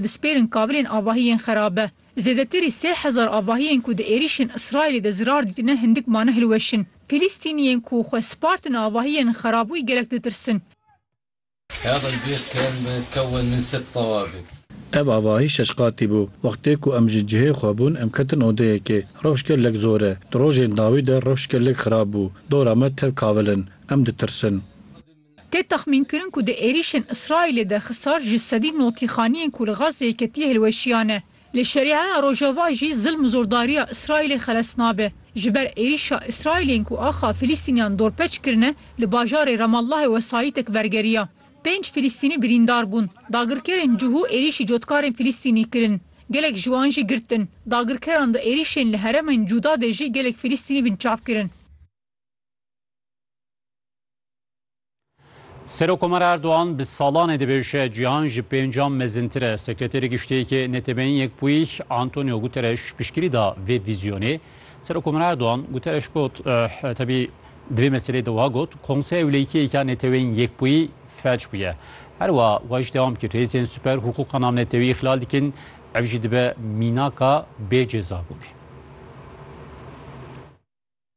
dispêrin kavilên avahî yên xerabe. Zêdetirî sê hezar avahiyên ku di êrîşên Îsraîlê de zirar dîtine hindik mane hilweşin. Fîlîstîniyên ku xwe spartine avahiyên xerabûyî gelek ditirsin. Ev avahî şeş qatî bû. Wextê ku em ji cihê xwe bûn em ketin odeyekê. Rewş gelek zor e. Di rojên dawî de rewş gelek xerab bû. Dora me tev kavil in. Em ditirsin. Tê texmînkirin ku di êrîşên Îsraîlê de xisar ji sedî notîxaniyên ku li Gazzê yekitî hilweşiya ne. Lê Şerîeya Rojava jî zilm û zordariya Îsraîlê xeles nabe. Ji ber êrîşa Îsraîlên ku axa Filîstîniyan dorpeç kirine, li bajarê Ramallahê wesayîtek bergeriya. Pênc Filîstînî birîndar bûn. Dagirkerên cihû êrîşî cotkarên Filîstînî kirin. Gelek ji wan jî girtin. Dagirkeran di êrîşên li heremên cûda de jî gelek Filîstînî binçav kirin. Serokomara Erdogan bi salanê dibêje cîhan ji pêncan mezintir e. Sekreterê Giştî yê NTB'yên Yekbûyî Antonio Guterres piştgirî da vê vîzyonê. Serokomara Erdogan Guterres got tevî di vê meselê de wiha got, Konseya Ewleyîkiyê ya Neteweyên Yekbûyî felç bûye. Her wiha wiha jî dewam kir, Hêzên siper hiqûqa navnetewî îxlal dikin, ev jî dibe mînaka bê cezabûnê.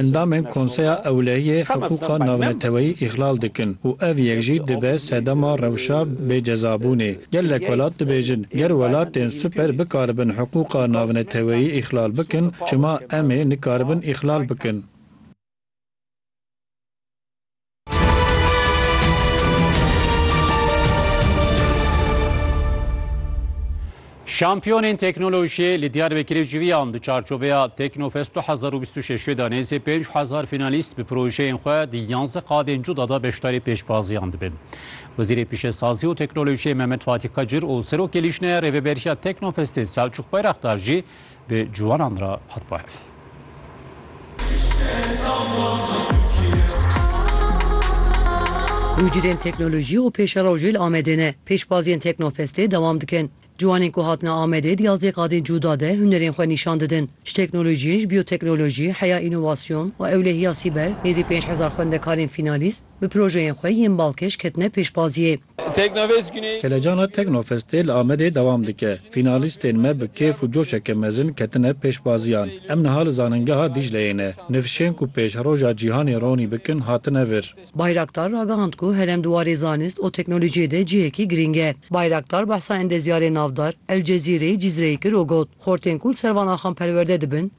Endamên Konseya Ewlehiyê hiqûqa navneteweyî îxlal dikin û ev yek jî dibe sedema rewşa bêcezabûnê. Gelek welat dibêjin, ger welatên super bikaribin hiqûqa navneteweyî îxlal bikin, çima em ê nikaribin îxlal bikin? Şampiyonên teknolojiyê li Diyarbekirê civiyan di çarçoveya Teknofest 2026 da nêzê 5000 finalîst bi projeyên xwe di 11 qadên cuda da beşdarî pêşbaziyan dibin. Wezîrê Pişesazî û Teknolojiyê Mehmet Fatî Qecir û Serokê Lîjneya Rêveberiya Teknofestê Selçuk Bayraktar jî Bi ciwanan re hat bo hev. Tûcirên teknolojî û pêşerojê li Amedê ne. Pêşbaziyên Teknofestê dewam dikin. Ciwanên ku hatine Amedê di yazdeh qadên cûda de hunerên xwe nîşan didin. Ji teknolojiyên ji bîyoteknolojî, heya înovasyon û ewlehiya sîber nêzî pênc hezar xwendekarên fînalîst, Bi projeyên xwe yên balkêş ketine pêşbaziyê. Teknovêst Guney. Kelecana Teknofestê li Amedê dewam dike. Fînalîstên me bi kêf û coşeke mezin ketine pêşbaziyan. Em niha li Zaningeha Dîcleyê ne. Nifşên ku pêşroja cîhanê ronî bikin hatine vir. Bayraktar ragihand ku herem di warê zanist û teknolojiyê de cihekî girîng e. Bayraktar behsa endezyarê navdar El Cezîreyê Cîzreyê kir û got, Xortên ku li ser van axan perwerde dibin,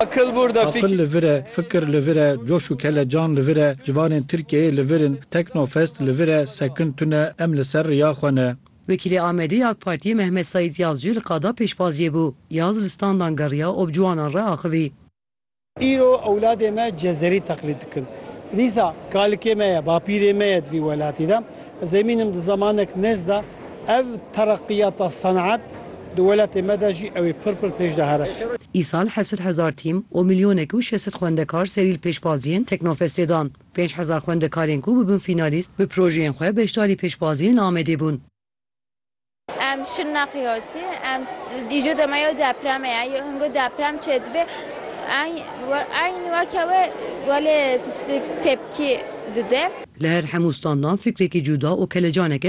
Aqil li vir e, fikir li vir e, coş û kelecan li vir e, civanên Tirkiyeyê li vir in, Teknofest li vir e, sekin tune, em li ser riya xwe ne. Wekîlê Amedê yê AK Partiyê Mehmet Saîd Yaz jî li qada pêşbaziyê bû. Yaz li standan geriya û bi ciwanan re axivî. Îro ewladê me Cezerî teqlîd dikin. Dîsa kalikê me ye, bapîrê me ye di vî welatî de. Ez emîn im di zemanek nêz de ev tereqîyata senaet di welatê me de jî ew ê pir pir pêş de here. Îsal heft sed hezar tîm û milyonek û şeş sed xwendekar serî li pêşbaziyên Teknofestê dan. Pênc hezar xwendekarên ku bibin fînalîst bi projeyên xwe beşdarî pêşbaziyên Amedê bûn. Em şil neqiyotî, em dîjo dema yew depremê ye, yew hingo deprem çê dibe, eyn weke we welê tiştê tepkî dide. Li her hemû standan fikrekî cuda û kelecaneke